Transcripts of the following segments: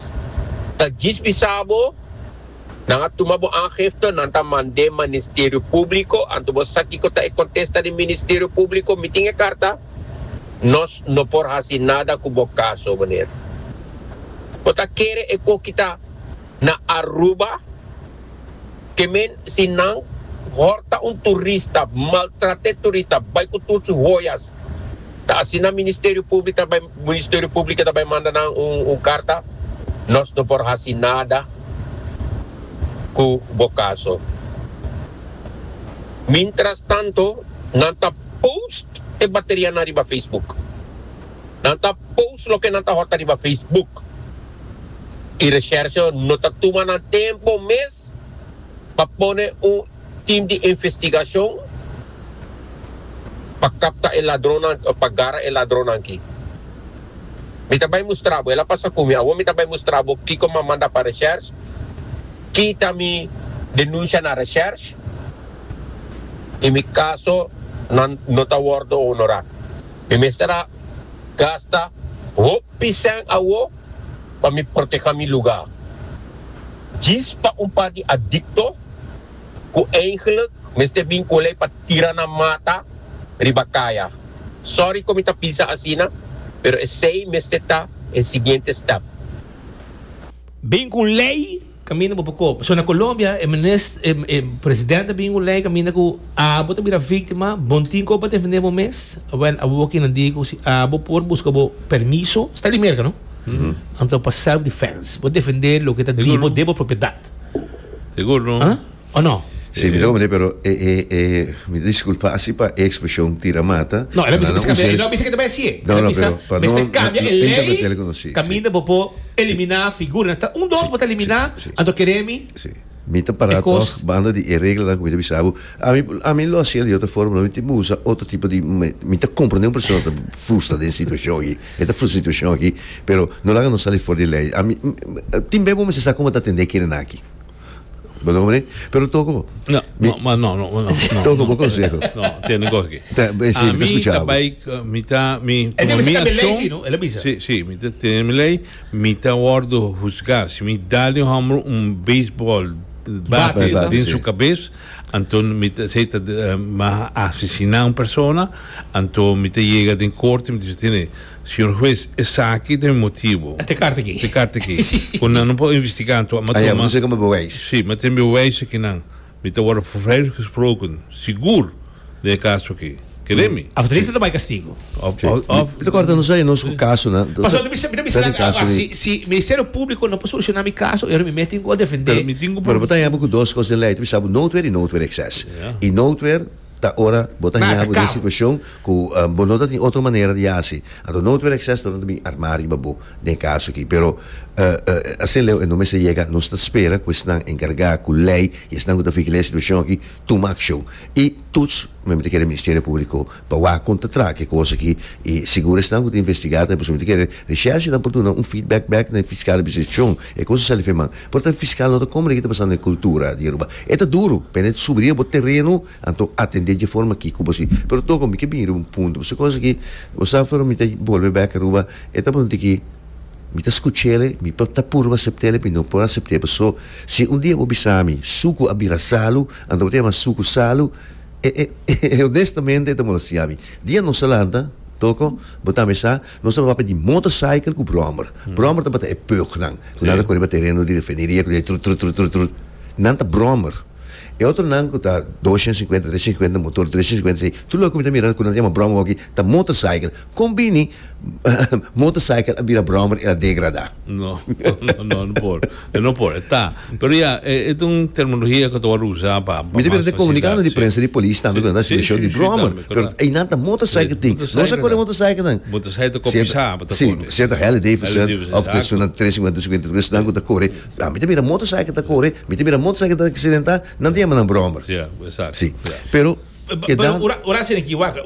Jesús ta djis bisa bo, Nan a tuma bo aangifte, nan ta mand'é Ministerio Públiko. Anto bo sa kiko ta e kontesta di Ministerio Públiko, Mi tin e karta, nos no por hasi nada ku bo kaso, meneer. Bo ta kere e koki ta na Aruba? Ke men si nan horta un turista, maltrat'é turista, bai ku tur su hoyas, ta asina Ministerio Públik ta bai Ministerio Públik ta bai manda nan un karta? Nos no por hasi nada ku bo kaso. Mintrastanto, nan ta post e baterianan riba Facebook. Nan ta post loke nan ta hota riba Facebook y Resherso no ta tuma nan tempo mes pa pone un team di investigacion pa capta e ladronnan of pa gara e ladronnan aki. Mi ta bay mustra bo, el a pasa cu mi, awor mi ta bay mustra bo kico mi a manda pa Resherso, kita mi denuncia na Resherso y mi caso nan no ta wordo honora. Mi mester a gasta hopi sèn awo pa mi proteha mi lugá. Djis pa un par di adikto ku eindelijk mester bin ku lei pa tira nan mata riba kaya. Sòri ku mi ta bisa asina, pero esei mester ta e siguiente stèp. Bin ku un lei Caminda bo pa copa. So na Colombia e minis, e, e presidente a bin cu ley caminda cu abo ta bira victima, bo no tin con pa defende bo mes, well abo kinan di cu si abo por busca bo permiso, sta di Merca no? Anto pa self defense, bo defende loke ta di bo den bo propiedad. Sigur no. Ah? o no? Si, mi ta comprende, pero e, e, e, mi ta disculpa asi pa e expresion tira mata, No, el a bisa mester cambia, el no a bisa ke ta bai así, el a bisa mester cambia e ley caminda bo por eliminá figura, ta un dos bo ta eliminá, anto kere mi, mi ta para tog banda di e reglanan ku mi ta bisa bo, ami, ami lo hasié di otro forma, lo mi tin por usa otro tipo di, mi ta comprende un persona ta frustra den situacion aki, e ta frustra den situacion aki, pero no laga nos sali for di ley, ami, tin be bo mester sa kon bo ta atendé e kerenan aki. Bo ta comprende? Pero toko. No, mi, no, no, no, no, no. Toko bo consejo. No, tiene gorgi. Ta, ben, sí, a mi escuchaba. ta bai, mi ta, mi, como mi acción. Sí, no, él bisa. Sí, sí, mi ta tiene mi ley, mi ta wordo juzgar. Si mi dale hombro un baseball bate bat, din sí. su cabeza, anton mi ta, si ta, uh, ma asesina un persona, anton mi ta llega den corte, mi ta tiene Señor Huez, esaki ta e motibo. Te karta aki. Te karta aki. Ku nan no por investigá anto. M'a tuma. M'a tuma bewijs. Sí, m'a tuma bewijs aki nan. Mi ta wòrdu vrijgesproken, sigur, den e kaso aki. Kere mi? Òf Dries ta bai kastigu. Òf, òf. Mi ta kòrda nos ei, nos ku kaso nan. Pasó, mi ta bisa nan aba. Si, si Ministerio Públiko no por solushoná mi kaso, e ora mi mete mi por defendé. Pero bo ta heba ku dos kos den lei. Mi ta bisa bo noodweer i noodweer ekses. I noodweer. Ta ora bo ta haña bo den situacion cu bo no ta tin otro manera di haci. Anto no tuer acces tornan ta bin arma riba bo den e caso aki. Pero asin leu e no mester yega. Nos ta spera cu esnan encarga cu ley y esnan cu ta fica ley e situacion aki tuma accion. Y toets mi ta kere Ministerio Publico pa wak con ta traha cu e cos aki y sigur esnan cu ta investiga tambe. Pasobra mi ta kere Reshershnan por duna un feedback back na e fiscal di seccion. E cosa sa Life man. Por ta fiscal no ta como de ki ta pasando e cultura di Aruba. E ta duro, pende ta subi riba bo terreno, anto atende dje forma ki cu bo si. Pero toco mi ke bini riba un punto, pasobra e cosa ki bo sa afuera mi ta bolbe back Aruba, e ta punto di ki mi ta scuchele, mi por ta purba aceptele, mi no por acepte paso si un dia bo bisa mi sucu a bira salu, anto bo ta yama sucu salu, e e e honestamente e ta molosia mi. Dia no sa lanta, toco, bo tambe sa, Nos tabata papia di motorcycle cu brommer. Brommer tabata e pögnan cu nan ta cor riba tereno di refineria cu ta trut trut trut trut. Nan ta brommer. E otronan cu ta doscientos cincuenta, trescientos cincuenta motor, trescientos cincuenta esey, tur lo cu mi ta mira cu nan ta yama brommer hoki ta motorcycle. Con bini motorcycle a bira brommer y a degrada? No, no, no, no por. E no por, e ta. Pero ya, e ta un terminologia cu ta word usa pa, pa mas facilidad. Mi ta bira den comunicado di prensa di polis tambe cu nan ta simishon di brommer. Pero einan ta motorcycle tin. Nos a kore motorcyclenan. Motorcycle ta copisá pa ta kore. Si enta Harley Davidson of ta esun nan tres cincuenta cincuenta tres nan cu ta kore. Pero mi ta bira motorcycle ta kore, mi ta bira motorcycle ta accidentá, nan ta yama nan brommer. Si. Pero. Keda. Ora asina aki wak,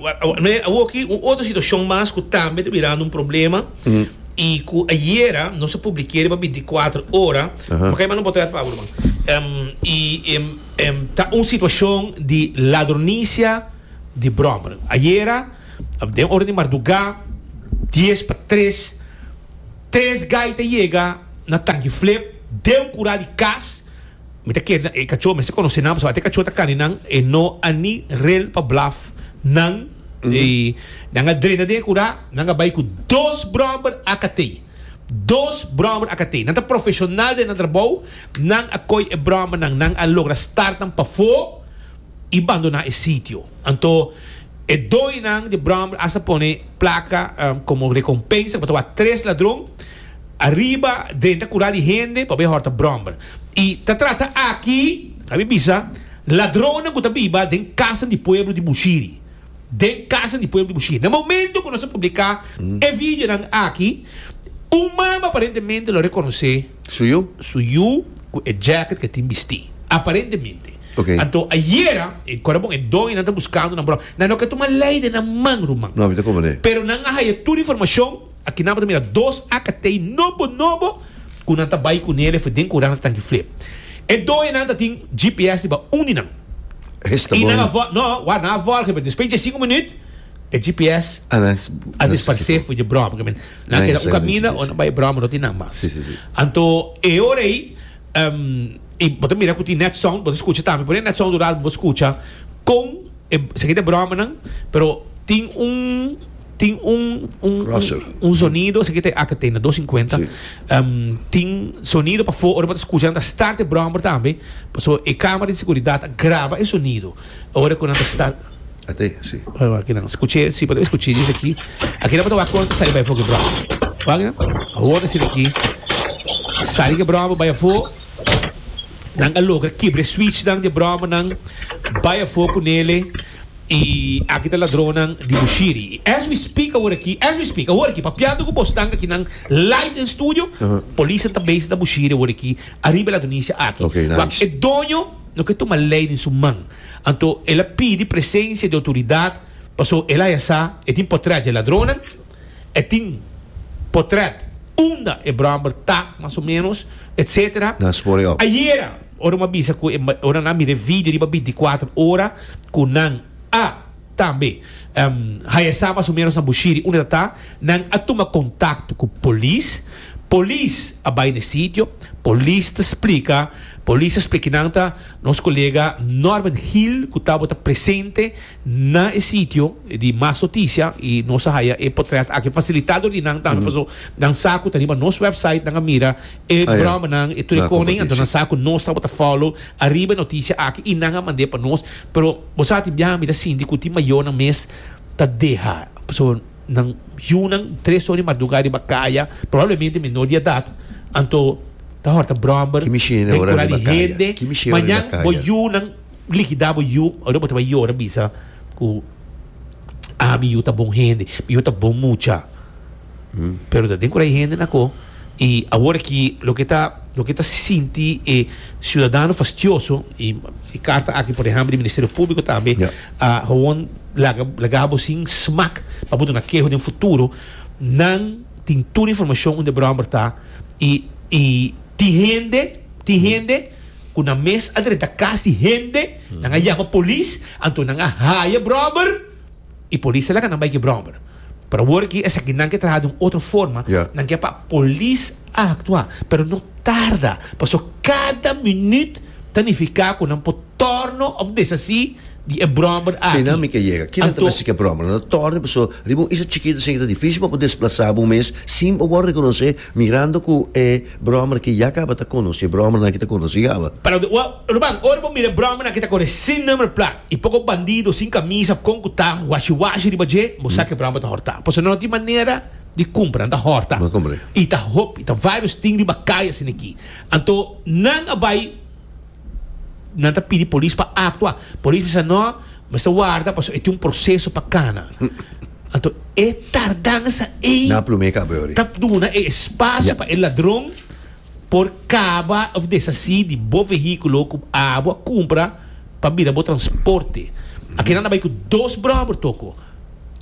awo aki un otro situacion mas cu tambe ta birando un problema y cu ayera nos a publikeri pa binticuater ora, maka e manda un portret Pablo man, y ta un situacion di ladronisia di brommer. Ayera den ora di marduga dies pa tres, tres gaita yega na Tanki Flip den cura di cas, Mi ta kere nan e kachó mester konosé nan pasobra ate kachó ta kani nan e no a ni rel pa blaf nan i nan a drena den e kurá nan a bai ku dos bròmber akatei dos bròmber akatei nan ta profeshonal den nan trabou nan a koi e bròmber nan nan a logra start nan pafó i bandoná e sitio anto e doño nan di bròmber asta pone plaka komo rekompensa ku ta wak tres ladron. Ariba den ta cura di hende pabia e horta bromber. Y ta trata aki, abi bisa, ladronnan cu ta biba den casanan di pueblo di Bushiri. Den casanan di pueblo di Bushiri. Na momento cu nos a publica e videonan aki, un mama aparentemente lo reconoce. Su yu? Su yu cu e jacket cu e tin bisti. Aparentemente. Ok. Anto ayera, e core bon, e doñonan ta buscando nan bromber. Nan no ke tuma ley den nan man, ruman. No, mi ta cumprende. Pero nan a haya tur informacion. Aki nan bo ta mira dos akatei nobo nobo ku nan ta bai kuné lef'e den kurá nan ta tanki flip. E doenan ta tin GPS riba un di nan. I nan a vòl, no, wak, nan a vòl gemen. Despues di e sinku minüt e GPS a disparsé for dje bròma gemen. Nan a keda un kaminda o nan bai bròma no tin nan mas. Anto e ora ei, i bo ta mira ku tin net sound, bo ta skucha tambe, pone net sound un rato pa bo skucha kon. e esaki ta bromanan pero tin un tin un un Crosser. un sonido esaki ta aka tenda 250 Sí. em, tin sonido pa fo ora pa ta escucha nan ta start e brommer tambe paso e camera di seguridad a graba e sonido ora cu nan ta start Ate, sí. Wak wak aki nan escuche si pa ta escuche dice aquí aquí nan pa ta wak cuando ta sali bay fo ki brommer wak aki nan hoor esina aquí sali ki brommer bay afo Nan a logra kibra e switchnan di e bromanan, bai afó ku Nele, i aki ta ladronnan di Bushiri. I as we speak awor aki, as we speak, awor aki, papiando ku bos nan aki nan live den studio, polisnan ta bezi na Bushiri awor aki, ariba e ladronisia aki. Okay, nice. Wak, e doño no ke tuma lei den su man, anto el a pidi presensia di outoridat, paso el haya sa e tin potrea dje ladronnan. E tin potret unda e bromber ta, mas o menos, etc. Nan spoor e op. Ayera, ora mi a bisa cu e, ora nan a mira e video riba binticuater ora, cu nan a tambe haya sa mas o menos nan bushiri unda ta ta, nan a tuma contacto cu polis, polis a bay na e sitio, polis ta splica, polis ta splica cu nan ta nos colega Norman Hill cu tabata presente Na e sitio di mas notisia y nos a haya e potret aki facilita door di nan tambe paso nan sa cu ta riba nos website nan a mira e bromanan, e tur e conen anto nan sa cu nos tabata follow ariba e notisia aki y nan a mande pa nos pero bo sa tin biaha a mira sinti cu tin mayonan mes ta deha paso nan yunan tres or di marduga riba caya probablemente menor di edad anto ta horta bromber den cura di hende mañan bo yunan. Likidá bo yu, ora bo ta bai yora bisa ku a mi yu ta bon hende, mi yu ta bon mucha. Pero ta den ku ta e hende na ko. I awor aki loke ta loke ta sinti e siudadano fastioso i e karta aki por ehèmpel di Ministerio Públiko tambe a hon laga laga bo sin smak pa bo duna keho den futuro. Nan tin tur informashon unda e bròmber ta i tin hende tin hende. ku nan mes a drenta kas di hende, nan a yama polis, anto nan a haya bròber i polis a laga nan bai ku e bròber. Pero awor aki esaki nan ke traha di un otro forma, nan ke pa polis a aktua, pero no tarda, paso kada minüt ta nifiká ku nan por tòrno òf deshasí di e bròber aki. Kina mi ke yega? Kina ta mester ku e bròber? Nan ta tòrno paso riba un isla chikitu esei ke ta difísil pa bo desplasá bo mes sin pa bo a rekonosé Mirando cu e bromer que ya caba ta conoce, bromernan que ta conoce caba. Para cu ta, ruman, ora bo mira e bromernan que ta corre sin number plaat y poco bandido sin camisa of con cu ta washi washi riba dje, bo sa cu e bromer ta horta. Pasobra no tin manera di cumpra, nan ta horta. Bo cumpra. Y ta hopi, ta varios tin riba calle asin aki. Anto, nan a bay. Nan ta pidi polis pa aktua. Polis bisa, No, mester warda pasobra e tin un proseso pa kana. Anto e tardansa ei ta duna e espasio pa e ladron por kaba òf deshasí di bo vehíkulo ku abo a kumpra pa bira bo transporte. Akinan a bai ku dos bròber, toko.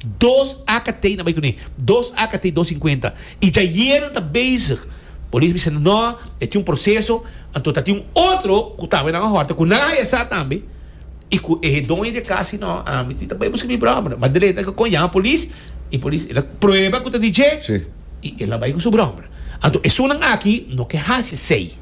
Dos akt na bai kuné. Dos akt dos sinkuenta. I dja yenan ta bezig. Polis bisa nan, No, e tin un proseso. Anto ta tin un otro ku tamba i nan a hòrta ku nan a haya sa tambe i ku e doño di e kas di, No, ami tin ta bai buska mi bròmera. But Delaeta a kon yama polis i polis el a prueba ku ta di dje i el a bai ku su bròmera. Anto esunnan aki no ke hasi esei.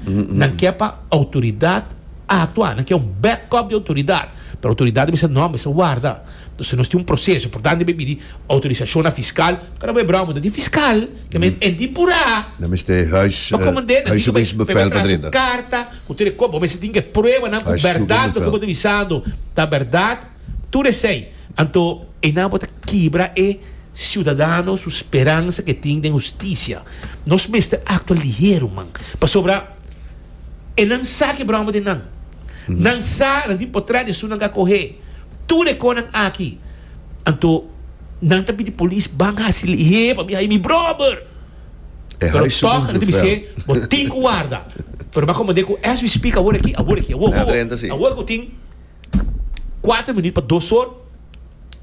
Nan ke pa outoridat. a aktua, nan ke un backup di outoridat, pero outoridat ta bisa no, mester warda, entonces nos tin un proseso, e por tanto debe pidi outorisashon na fiskal, kora bo e brou, bo ta tin fiskal, ke men enti y pura. Nan mester e huis, e huiszoekingsbevel ta drinta. Karta ku tur e kos, bo mester tin ke pruebanan ku bèrdat loke bo ta bisando ta bèrdat, tur esei, anto einan bo ta kibra e siudadano su speransa ke tin den hustisia, nos mester aktua lihero man, pasobra. E nan sa ke bròma den nan. Nan sa, nan tin potret esun nan ka kohe tur e konan aki. Anto nan ta pidi polis ban hasi lihé pabia hay mi bròber. Pero tòg nan ta bis'é, Bo tin ku warda. Pero m'a komand'é ku as we speak awor aki, awor aki, awor, awor, awor ku tin kuater minüt pa dos or.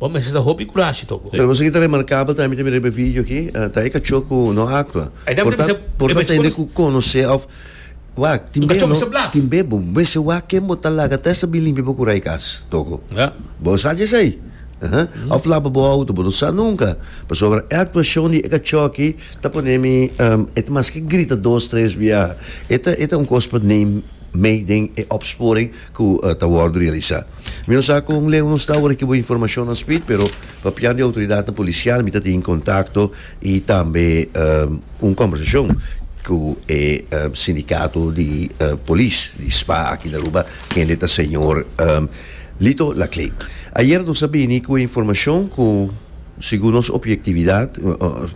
Bo mester ta hopi kurashi tok bo. Pero bo sigi ta remarkabel tambe ta mira riba e video aki, ta e kachó ku no aktua. Por ta por ta tende ku konosé òf wak tin be no tin be bo mester wak ken bo ta laga ta esta bin limpia bo kura e kas toko. Bo sa dj'esei? Aha òf laba bo outo bo no sa nunka pasobra e aktuashon di e kachó aki ta pone mi e ta maske grita dos tres biaha e ta e ta un kos pa neem mee den e opsporing. ku ta wòrdu realisá. Mi no sa kon leu nos ta ora ki bo informashonnan spit, pero pa pian di outoridatnan polisial mi ta tin kontakto i tambe un kòmbersashon ku e sindikato di polis di spa aki na Aruba, kende ta señor Lito Laclé. Ayer nos a bini ku e informashon ku. Segun nos opiektividat,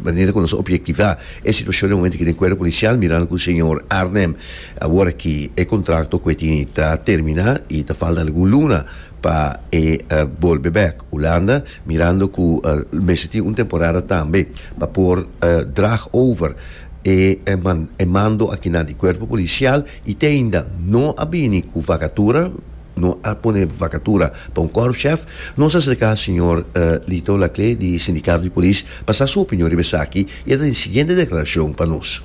manera ku nos opiektivá e situashon den momentu aki den Kuerpo Polisial mirando ku señor Arnhem a wòrdu aki e kontrakto ku e tini ta terminá i ta falta algun luna pa e bolbe bèk Hulanda mirando ku mester tin un temporada tambe pa por draag over e e mando akinan di Kuerpo Polisial i te ainda no a bini ku vakatura. No a pone vakatura pa un kòrpschèf. Nos a serká señor Lito Laclé di Sindikato di Polis pa sa su opinion riba esaki i e ta den siguiente deklarashon pa nos.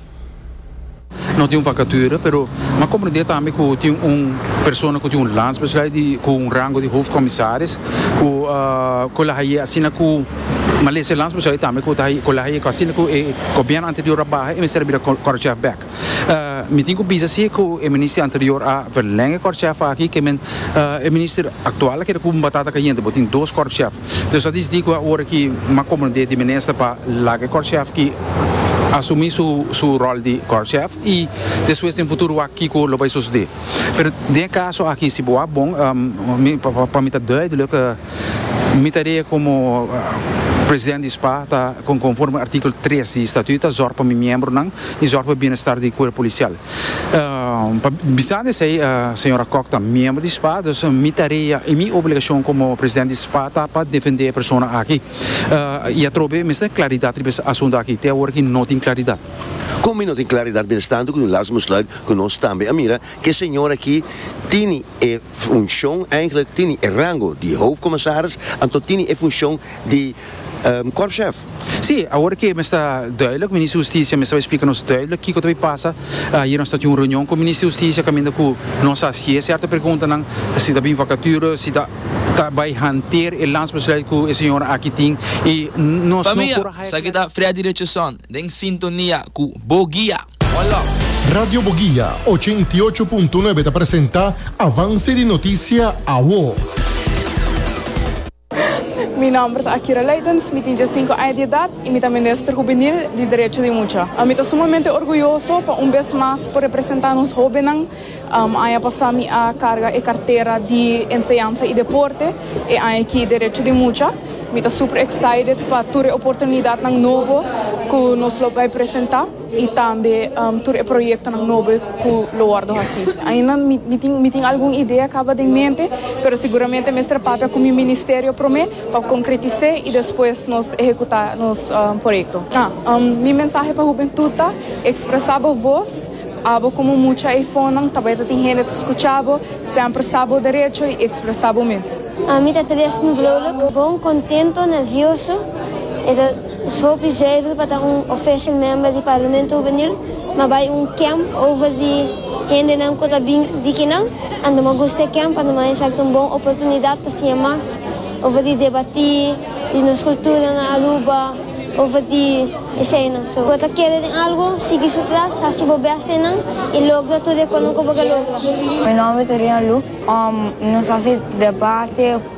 No tin un vakatura pero mi a komprendé tambe ku tin un persona ku tin un landsbesluit di ku un rango di hofkomisaris ku ku la haye asina ku malesa e landsbesluit tambe ku ta haye ku la haye ku asina ku e gobièrnu anterior a baha e mester a bira kòrpschèf bèk. Mi tin ku bisa si ku e minister anterior a verlèng e kòrpshèf aki ke men e minister aktual a keda ku un batata kayente. Bo tin dos kòrpshèf. Dòs a disití ku a ora ki mas komprendé di minister pa laga e kòrpshèf ki asumí su su ròl di kòrpshèf i despues den futuro wak kiko lo bai sosodé. Pero den e kaso aki si bo wak bon mi pa mi ta duidelijk mi tarea komo president di spa ta konforme artíkulo tres di statuut ta zòrg pa mi miembronan y zorg pa e bienestar di Cuerpo Policial. Pa bisando esey Señora Kok ta miembro di spa, dus mi tarea y mi obligacion como President di spa ta pa defende e persona aki. Y atrobe mester claridad riba es asunto aki, te awor aki no tin claridad. Como mi no tin claridad mientestando cu mi last besluit cu nos tambe a mira cu e señor aki tini e funcion, eigenlijk tini e rango di Hoofdcommissaris, anto tini e funcion di Korpschef, Sí, awor ke mester duidelijk, Minister Husticia mester bay splika nos duidelijk kiko ta bay pasa. Ayer nos ta tin un reunion cu Minister Husticia caminda cu nos a hacié certo preguntanan, si ta bin vacature, si ta ta bay hanteer e landsbesluit cu e señora aki tin y nos Pa no mia, por haya. Esaki ta Freddy Richardson den sintonia cu Bo Guia. One love. Radio Boguia ochenta i ocho punto nuebe ta presenta Avance di Noticia, Awo. Mi nòmber ta Akira Leidens, mi tin djasinku aña di edat i mi ta Minister Hubenil di Derecho di Mucha. Mi ta sumamente orguyoso pa un bes mas por representá nos hóbennan. Aña pasá mi a karga e kartera di Enseñansa i Deporte, e aña aki Derecho di Mucha. Mi ta super excited pa tur e oportunidatnan nobo ku nos lo bai presentá. y tambe tur e proyectonan nobo cu lo wordo haci. Ainda mi tin algun idea caba den mente, pero seguramente mester papia cu mi ministerio prome pa concretis'e y despues nos ehecuta nos proyecto. Mi mensahe pa hubentud ta, expresa bo voz, abo como mucha ei fonnan tabata tin hende ta scucha bo, semper sa bo derecho y expresa bo mes. Mi ta tres nu vrouwluk bon, kontento, nervioso. Nos hopi zuiver pa ta un official member di Parlamento Hubenil, ma bai un camp over di hendenan cu ta bin di kinan. Anto nos gusta e camp anto nos a haya esaki ta un bon oportunidad pa siña mas over di debati, di nos cultura na Aruba, over di eseinan. Si bo ta kere den algo, sigui su tras, haci bo best den nan y logra tur e cu nan cu bo ke logra. Mi nomber ta Rian Lu. Nos haci debati.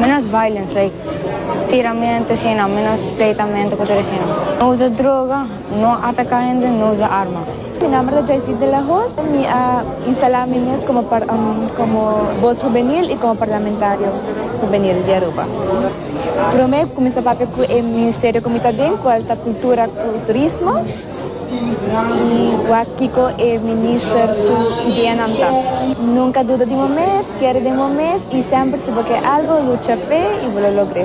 Menos violence like tiramento así nan menos pleitamento cu tur así nan. No usa droga, no ataca hende, no usa arma. Mi nomber ta Joycey de la Hoz. Mi a instala mi mes como como voz juvenil y como parlamentario juvenil di Aruba. Prome mi cuminsa papia cu e ministerio cu mi ta den cual ta cultura cu turismo. Y wak kiko e minister su ideanan ta. Nunca duda di bo mes, kere den bo mes y semper si bo ke algo, lucha p'e y bo lo logr'e.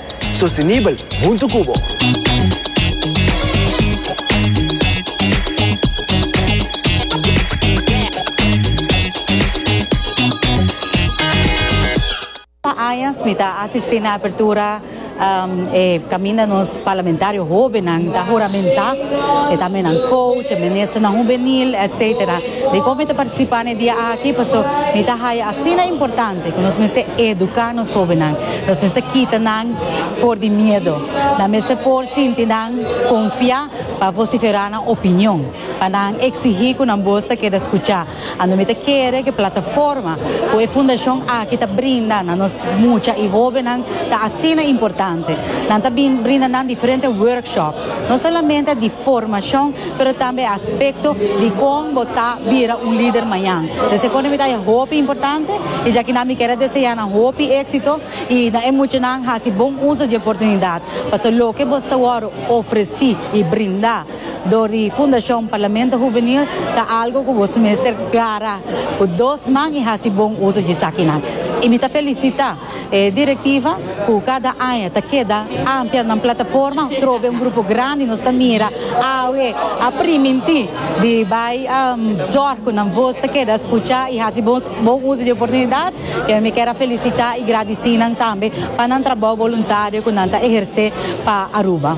Sostenibel hunto cu bo. Pa añas mi ta asisti na apertura e caminda nos parlamentario hobennan ta huramenta, e ta menan coach, e ministernan hubenil, etc. Dicor mi ta participa na e dia aki? Pasobra mi ta haya asina importante cu nos mester educa nos hobennan. Nos mester kita nan for di miedo. Nan mester por sinti nan konfiá pa vosiferá nan opinion, pa nan eksigí ku nan bos ta keda skuchá. Anto mi ta kere ku e plataforma ku e fundashon aki ta brinda na nos mucha i hóbennan ta asina importante. Nan ta brinda nan diferente workshop. No solamente di formacion pero tambe aspecto di con bo ta bira un lider mañan. Por eseco mi ta haci hopi importante y ya kinan mi quiere desea nan hopi exito y na e muchanan haci bon uso di e oportunidad. Pasobra loke bo sta wor ofreci y brinda door di Fundacion Parlamento Juvenil ta algo cu boso mester clara cu dos man y haci bon uso di esakinan. Y mi ta felicita. E directiva cu cada aña ta keda ampia nan plataforma trobe un grupo grandi nos ta mira awe a priminti di bay zorg cu nan voz ta keda scucha y haci bon uzo di e oportunidad y mi kier a felicita y gradici nan tambe pa nan trabao voluntario cu nan ta eherce pa Aruba.